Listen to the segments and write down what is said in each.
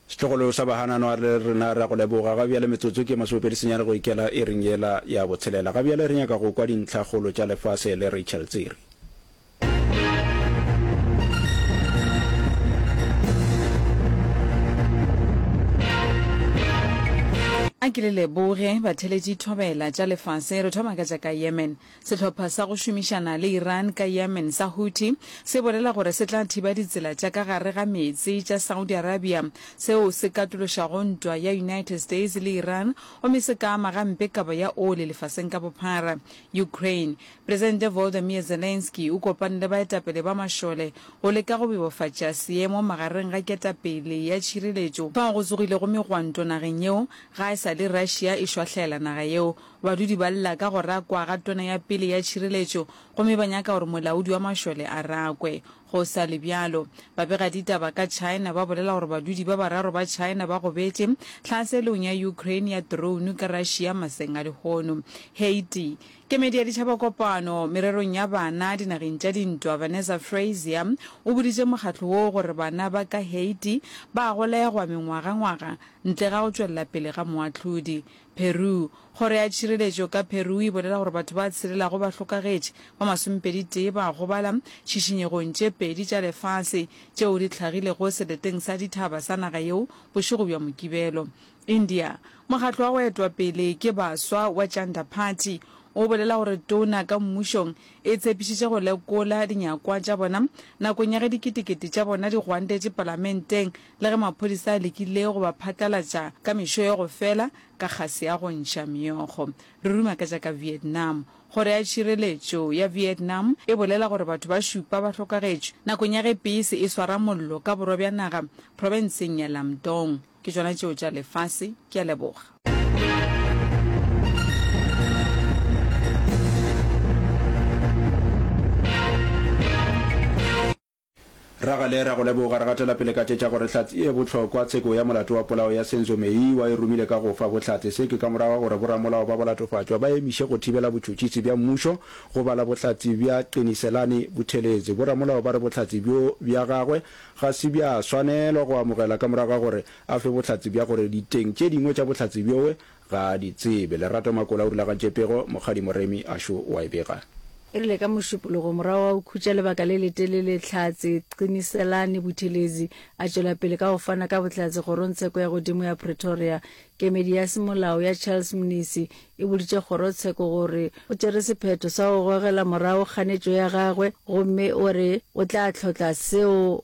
Setlogolo sa bahanano a re, Rena re a go leboga. Ga bjale metsotso ke masomepedi senyane go ikela iring yela ya botshelela. Ga bjale re nyaka go kwa dintlha kgolo tša lefase le Rachel Tsiri. A ke le leboge, batheletši. Thobela tša lefase, re thoma ka tša ka Yemen. Sehlopha sa go šomišana le Iran ka Yemen sa Houthi se bolela gore se tla thiba ditsela tša ka gare ga meetse tša Saudi Arabia, seo se katološago ntwa ya United States le Iran gomme se ka ama gampe kabo ya oli lefaseng ka bophara. Ukraine, Presidente Volodymyr Zelensky o kopane le baetapele ba mašole go leka go bebofatša seemo magareng ga ketapele ya tšhireletšo fao go tsogilego megwanto nageng yeo ga e sa le Russia e šwahlela naga yeo Badudi ba lla ka go rakwa ga Tona ya pele ya Tšhireletšo gomme ba nyaka gore molaodi wa mašole a rakwe. Go sa le bjalo, babegaditaba ka China ba bolela gore badudi ba bararo ba China ba gobetše tlhaselong ya Ukraine ya drone ka Russia maseng a lehono. Haiti. Kemedi ya Ditšhabakopano mererong ya bana dinageng tša dintwa Vanessa Frazier o boditše mokgatlo woo gore bana ba ka Haiti ba a golegwa mengwagangwaga ntle ga go tšwelela pele ga moahlodi. Peru. Kgoro ya Tšhireletšo ka Peru e bolela gore batho ba tshirelago bahlokagetši ba masomepeditee ba gobala tšhišinyegong tše pedi tša lefase tšeo di tlhagilego seleteng sa dithaba sa naga yeo bošego bja Mokibelo. India. Mokgatlo wa go etwa pele ke baswa wa Janta Party o bolela gore tona ka mmušong e tshepišitše go lekola dinyakwa tša bona nakong ya ge diketekete tša bona di gwantetše palamenteng Le ge maphodisa a lekile go ba phatlalatša ka mešo ya go fela ka kgase ya go ntšha meokgo, re ruma ka tša ka Vietnam. Kgoro ya Tšhireletšo ya Vietnam e bolela gore batho ba šupa ba hlokagetšwe nakong ya ge peise e swara mollo ka borwa bja naga profenseng ya Lam Dong. Ke tšona tšeo tša lefase. Ke a leboga. Ragale, ra go leboga. Re gatela pele ka tše tša gore hlatse e bohlokwa. Tsheko ya molato wa polao ya Senzo Meyiwa e romile ka go fa bohlatse. Se ke ka morago ga gore boramolao ba bolatofatšwa ba emiše go thibela botšhotšhisi bja mmušo go bala bohlatse bja Qiniselani Buthelezi. Boramolao ba re bohlatse bjo bja gagwe ga se bja swanelwa go amogela ka morago ga gore a fe bohlatse bja gore diteng tše dingwe tša bohlatse bjoe Ga a di tsebe. Lerato Makola o rulagatše pego, Mokgadi Moremi a šo o a e bega. E rile ka Mošupologo, morago ga go khutša lebaka le letelele, Tlhatse Qiniselani Buthelezi a tšwela pele ka go fana ka bohlatse Kgorongtsheko ya Godimo ya Pretoria. Kemedi ya Semolao ya Charles Mnisi e boditše Kgorotsheko gore o tšere sephetho sa go gogela morago kganetšo ya gagwe gomme o re o tla tlhotla seo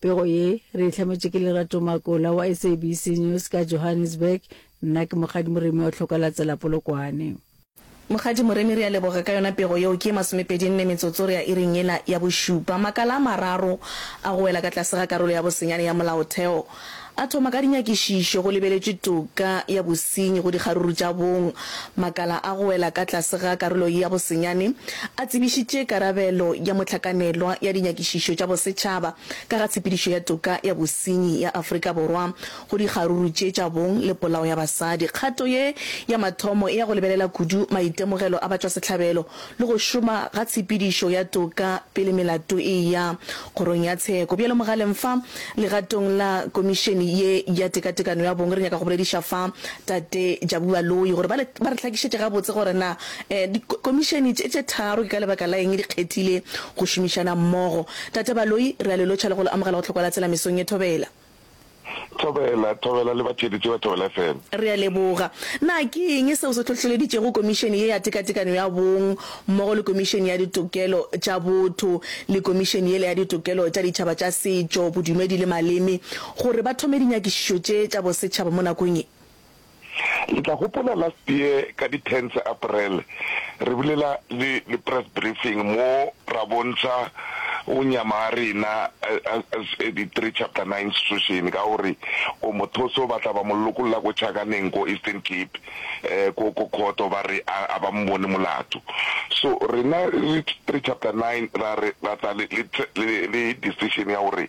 Pego ye, re e hlametšwe ke Lerato Makola wa SABC News ka Johannesburg. Nna ke Mokgadi Moremi wa Tlhokalatsela Polokwane. Mokgadi Moremi, re a leboga ka yona pego yeo. Ke ye masomepedi nne metsotso re ya iring yela ya bošupa. Makala a mararo a go wela ka tlase ga karolo ya bosenyane ya Molaotheo A thoma ka dinyakišišo go lebeletšwe toka ya bosenyi go dikgaruru tša bong. Makala a go wela ka tlase ga karolo ye ya bosenyane a tsebišitše karabelo ya mohlakanelwa ya dinyakišišo tša bosetšhaba ka ga tshepedišo ya toka ya bosenyi ya Afrika Borwa go dikgaruru tše tša bong le polao ya basadi. Kgato ye ya mathomo e ya go lebelela kudu maitemogelo a batšwasehlabelo le go šoma ga tshepedišo ya toka pele melato e eya Kgorong ya Tsheko. Bjalo mogaleng fa, legatong la Komišene ye ya Tekatekano ya Bong, re nyaka go bolediša fa Tate Jabu Baloyi gore ba le, ba re hlakišetše gabotse gore na eh, di, Komišene tše, tše tharo ke ka lebaka la eng di kgethile go šomišana mmogo. Tate Baloyi, re a le lotšha le go le amogela go Tlhokwa la Tsela mesong ye thobela. Thobela, thobela le batheeletši ba Thobela FM. Re a leboga. Na ke eng seo se hlohleleditšego Komišene ye ya Tekatekano ya Bong mmogo le Komišene ya Ditokelo tša Botho le Komišene yela ya Ditokelo tša Ditšhaba tša Setšo, Bodumedi le Maleme gore ba thome dinyakišišo tše tša bosetšhaba mo nakong ye? Le tla gopola last year ka di ten tsa April re bulela le le press briefing mo ra bontšha go nyama ga rena as di three chapter nine institution ka gore o mothoso ba tla ba mo lokolla ko Chakaneng ko Eastern Cape ko ko khoto ba re a ba mbone molato so rena re three chapter nine ra re ra tla le le le decision ya gore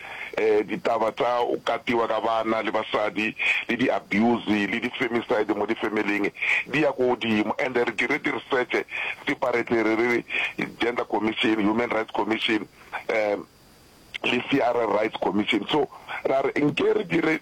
Eh, ditaba tsa o katiwa ka bana le basadi le di abuse le di femicide mo di familyng di ya ko godimo and re dire di research separately re re gender commission, human rights commission, eh, le CRR rights commission so ra re nke re dire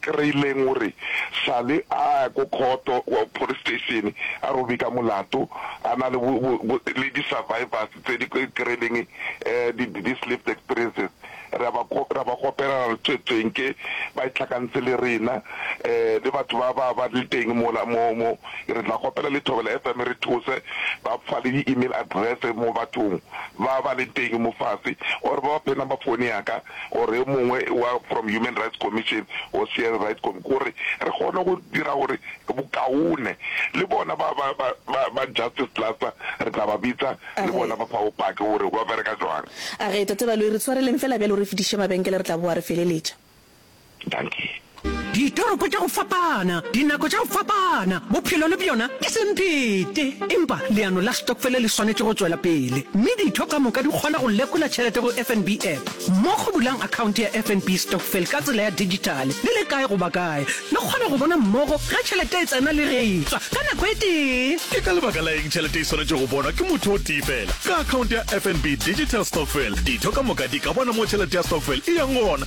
Kreileng o re sale a ya ko khoto, police station, a re o bika molato, a na le le di-survivors tse di kreileng these lived experiences, re a ba ra ba kgopela ra re tswetsweng ke ba itlhakantshe le rena, le batho ba ba ba le teng mola mo mo re tla kgopela le Thobela FM e re thuse ba fa le di-email address mo bathong ba ba leng teng mo fase or ba ba fe number phone ya ka. or yo mongwe wa from Human Rights Commission or Cn Right Commi gore re kgone go dira gore bokaone le bona ba ba ba ba ba Justice Plus re tla ba bitsa A le re. bona ba fa bopaki gore ba bereka jwang. A re, Tate Baloyi, re tshwareleng fela bjalo re fetiše mabenkele re tla boa re feleletša. Dankie. Ditoropo tša go fapana, dinako tša go fapana, bophelo le bjona ke semphete. Empa leano la stokfele le swanetše go tšwela pele, mme ditho ka moka di kgona go lekola tšhelete go FNB App. Mo go bulang akhaonte ya FNB Stokvel ka tsela ya dijithale, le le kae goba kae, le kgona go bona mmogo ge tšhelete e tsena le ge e tšwa ka nako e tee. Ke ka lebaka la eng tšhelete e swanetše go bonwa ke motho o tee feela? Ka akhaonte ya FNB Digital Stokvel, ditho ka moka di ka bona mo tšhelete ya stokvel e yang gona.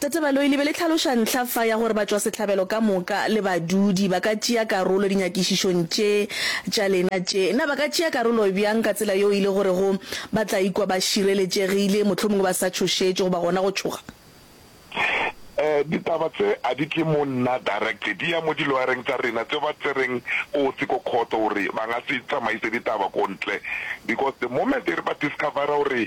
Tate Baloyi, le be le tlhaloša ntlha fa ya gore batšwasehlabelo ka moka le badudi ba ka tšea karolo dinyakišišong tše tša lena tše. Na ba ka tšea karolo bjang ka tsela yeo e le gorego ba tla ikwa ba šireletšegile, mohlomongwe ba sa tšhošetšwe goba gona go tšhoga? Eh, ditaba tse a di tle mo nna direct, di ya mo diloyareng tša rena tše ba tsereng kotsi ko khoto gore ba nga se tsamaise ditaba ko ntle because the moment e re ba discovera gore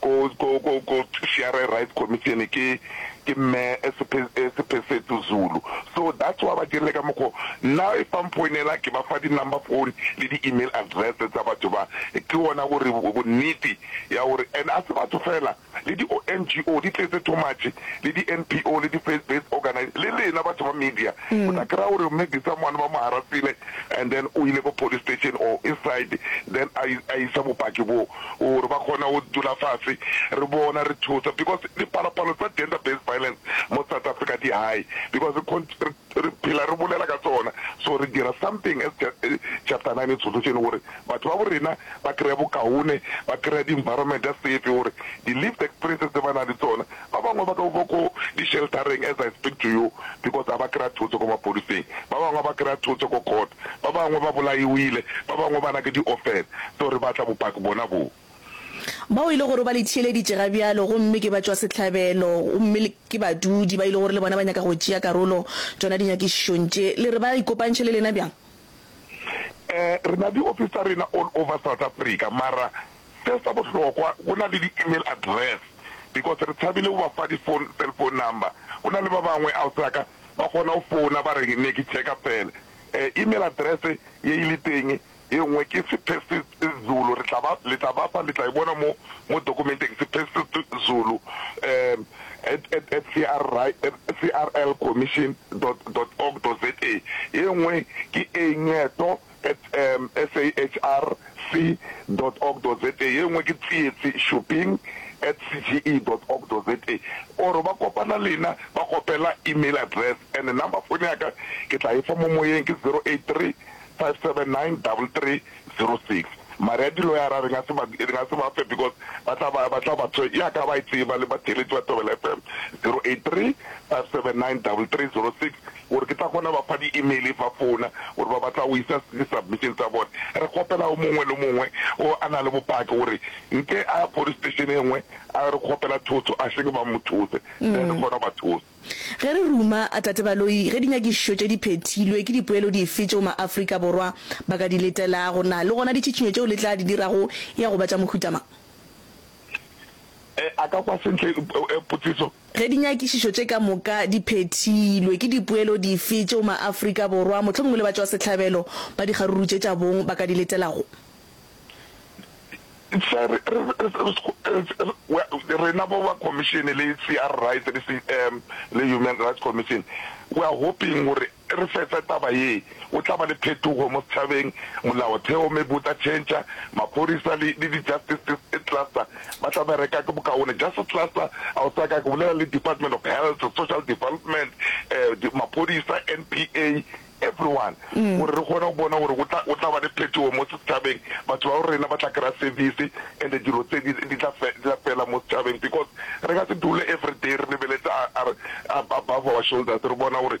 ko ko ko ko CRA Rights Commission ke ke mme Sephesethu Zulu so that's why ba dirile ka mokgo nna if ba mphoinela ke ba fa di number phone le di email address tsa batho ba ke ona gore bonnete ya gore and a se batho fela le di NGO di tletse too much le di NPO le di faith based organization le lena batho ba media o tla kry-a gore mme Disamane ba mo harassile and then o ile ko police station or inside then a isa bopaki boo gore ba kgona go dula fase re bona re thusa because dipalopalo tsa gender based violence mo South Africa di high because re phela re bolela ka tsona so re dira something as chapter nine solution gore batho ba bo rena ba kry-e bokaone ba kry-e di environment safe gore di lived experiences tse ba nang le tsona Ba bangwe ba ka uba ko di sheltareng as I speak to you because a ba kry-a thuso ko maphodiseng, ba bangwe a ba kry-a thuso ko court, ba bangwe ba bolaiwile, ba bangwe ba na ke di orphan, so re batla bopaki bona boo. Bao e le gore o ba letheeleditše ga bjalo gomme ke batšwasehlabelo gomme ke badudi ba e le gore le bona ba nyaka go tšea karolo tšona dinyakišišong tše, le re ba ikopantšhe le lena bjang? Eh, re na di office tsa rena all over South Africa mara Se sa bohlokwa go na le di email address because re tshabile go ba fa di phone cell phone number go na le ba bangwe ausi ya ka ba kgona go founa ba re ne ke checka fela eh email address ye e le teng ye nngwe ke sephesetzulu re tla ba le tla ba fa le tla e bona mo mo dokumenteng sephesetzulu um at at at CRI crlcommission dot dot org dot za ye nngwe ke engeto at sahrc.org.za, ye nngwe ke tsietsi, shopping, at cge.org.za, or ba kopana lena ba kgopela email address, and number fone ya ka ke tla efa mo moyeng, ke zero eight three five seven nine double three zero six. Mare ya di-lawyer-a re nga se ba, re nga se ba fe because ba tla ba, ba tla ba tshwe, ya ka ba e tseba le batheeletši ba Thobela FM, zero eight three five seven nine double three zero six. Gore ke tla kgona ba fa di email fa fona gore ba batla go isa di submission tsa bona re kgopela go mongwe le mongwe o a na le bopaki gore nke a ya police station e ngwe a re kgopela thotho a seke ba mo those then re kgona ba those. Ge re ruma a Tate Baloyi ge dinyakišišo tše di phethilwe ke dipoelo dife tšeo ma Afrika Borwa ba ka di letelago na le gona ditšhitšhinyo tšeo le tla di dirago ya go ba tša mohuta mang? Ee, a ka kwa sentle potšiso. Ge dinyakišišo tše ka moka di phethilwe, ke dipoelo dife tšeo maAfrika Borwa, mohlomongwe le batšwasehlabelo ba dikgarurutšetšabong ba ka di letelago? Sir, re, re, re, re, re, rena bo ba Khomišene le CRRights le, um, le Human Rights Commission, we are hoping gore re fetsa taba ye, go tla ba le phetogo mo setšhabeng, molaotheo maybe o tla change, maphorisa le le di justice e cluster ba tla bereka ke bokaone, justice cluster a o sa ka ke bolela le department of health, social development, um maphorisa, NPA, everyone gore re kgone go bona gore go tla go tla ba le phetogo mo setšhabeng, batho ba bo rena ba tla kry-a service and dilo tse di di tla di tla fela mo setšhabeng because re ka se dule everyday re lebeletse above our shoulders re bona gore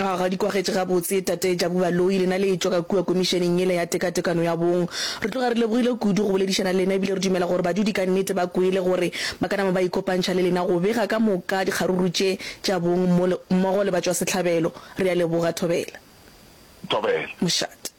A ga di kwagetše gabotse, Tate Jabu Baloyi, lena le etšwa ka kua Komišeneng yela ya Tekatekano ya Bong. Re tloga re lebogile kudu go boledišana le lena ebile re dumela gore badudi ka nnete ba kwele gore ba ka nama ba ikopantšha le lena go bega ka moka dikgaruru tše tša bong mmogo le batšwasehlabelo. Re a leboga. Thobela. Thobela. Mošate.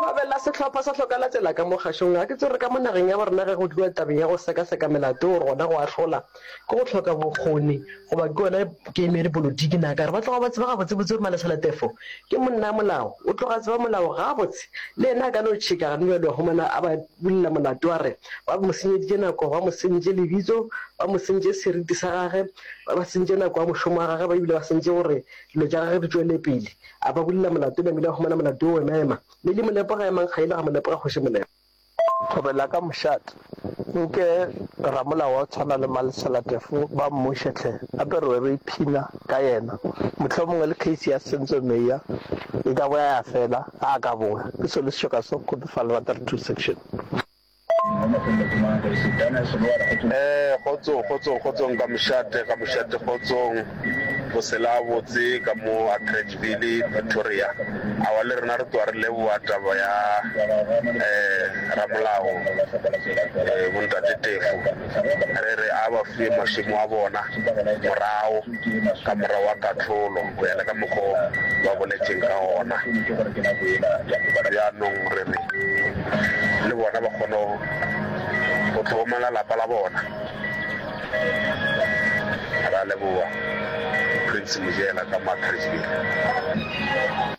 Babela sehlopha sa hloka latela ka mo kgašong. Ga ke tsebe gore ka mo nageng ya bo rena ge go tliwa tabeng ya go sekaseka melato gore gona go ahlola ke go hloka bokgoni goba ke yona kemedi polotiki na kare ba tloga ba tseba gabotsebotse gore Malesaletefo ke monna molao o tloga tseba molao gabotse le yena a ka no tšheka gane bjale wa humana a ba bulela molato a re ba mo senyeditše nako ba mo sentše lebitso ba mo sentše seriti sa gage ba ba sentše nako ya mošomo wa gage ba ebile ba sentše gore dilo tša gage di tšwelepele A ba bulela molato, namile a humana molato wo ema-ema. Me li mo lepoga, emang ga ile ga mo lepoga Kgoši Molema. Thobela ka mošate, nke ramolao wa go tshwana le Malesela Tefo ba mmuše hle, gape re be re iphina ka yena. Mohlomongwe le case ya Senzo Meyiwa e ka boya ya fela, ga a ka boa. Ke Solisišo Kaso, Kgodufa, Albatari Two Section. Ee, kgotsong, kgotsong, kgotsong ka mošate, ka mošate, kgotsong. Bosela a botse ka mo Atteridgeville, Pretoria. Aowa, le rena re tloga re leboga taba ya, ee, ramolao, ee, Bontate Tefo. Re re a ba fue masimo a bona morago ka morago ga kahlolo, go ya le ka mokgo ba boletšeng ka gona. Bjanong re re le bona ba kgone go tlhokomela lapa la bona. Ra leboga, Prince Mojela ka Matrixville.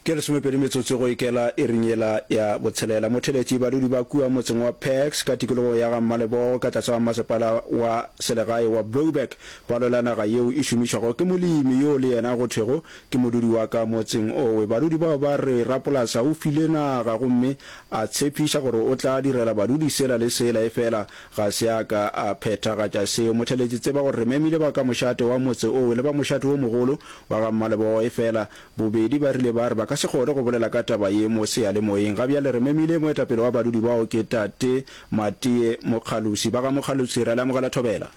Ke lesomepedi metsotso go ikela iring yela ya botshelela. Motheletši, Badudi ba kua motseng wa Pax ka tikologo ya ga Mmalebogo ka tlase ga masepala wa selegae wa Brouwerk ba lwela naga yeo e šomišwago ke molemi yo le yena go thwego ke modudi wa ka motseng owe. Badudi bao ba re rapolasa o file naga gomme a tshepiša gore o tla direla badudi sela le sela efela Ga se a ka a phethagatša seo. Motheletši, tseba gore re memile ba ka mošate wa motse oo le ba mošate wo mogolo wa ga Mmalebogo, efela bobedi ba rile ba re ba ka se kgone go bolela ka taba ye mo seyalemoyeng. Ga bjale re memile moetapele wa badudi bao ke Tate Matie Mokgalusi. Ba ga Mokgalusi, re a le amogela Thobela.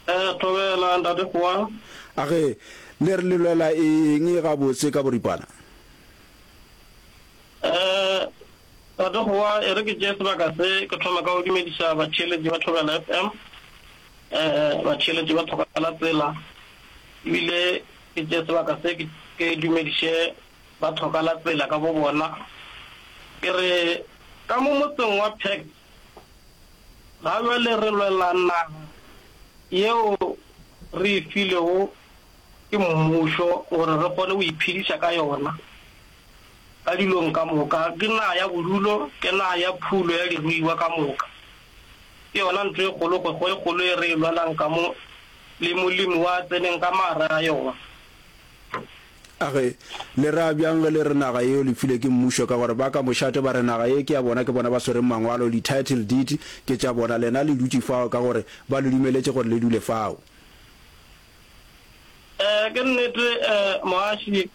Ee, Thobela, Ntate Kgowa. A ge, le re le lwela eng gabotse ka boripana? Ee, Tate Gowa, e re ke tšee sebaka se ke thome ka go dumediša batheeletši ba Thobela FM. Batheeletši ba Thobela Tsela ebile ke tšee sebaka se ke dumediše ba Thokala Tsela ka bobona. Ke re ka mo motseng wa Pax ga bjale re lwela naga yeo re e filego ke mmušo gore re kgone go iphediša ka yona. Ka dilong ka moka, ke naga ya bodulo, ke naga ya phulo ya diruiwa ka moka. Ke yona ntlo e kgolo, kgwego e kgolo e re e lwalang ka mo, le Molimo wa tseneng ka magareng ga yona. A re, Le ra bjang ge le re naga yeo le filwe ke mmušo? Ka gore ba ka mošate ba re, Naga ye ke ya bona, ke bona ba swereng mangwalo, di-title deed ke tša bona, lena le dutše fao ka gore ba le dumeletše gore le dule fao. Ee, ke nnete, Moaši.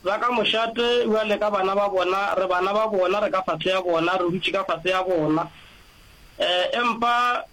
Ba ka mošate, bjale ka bana ba bona, re bana ba bona, re ka fase ya bona, re dutše ka fase ya bona. Empa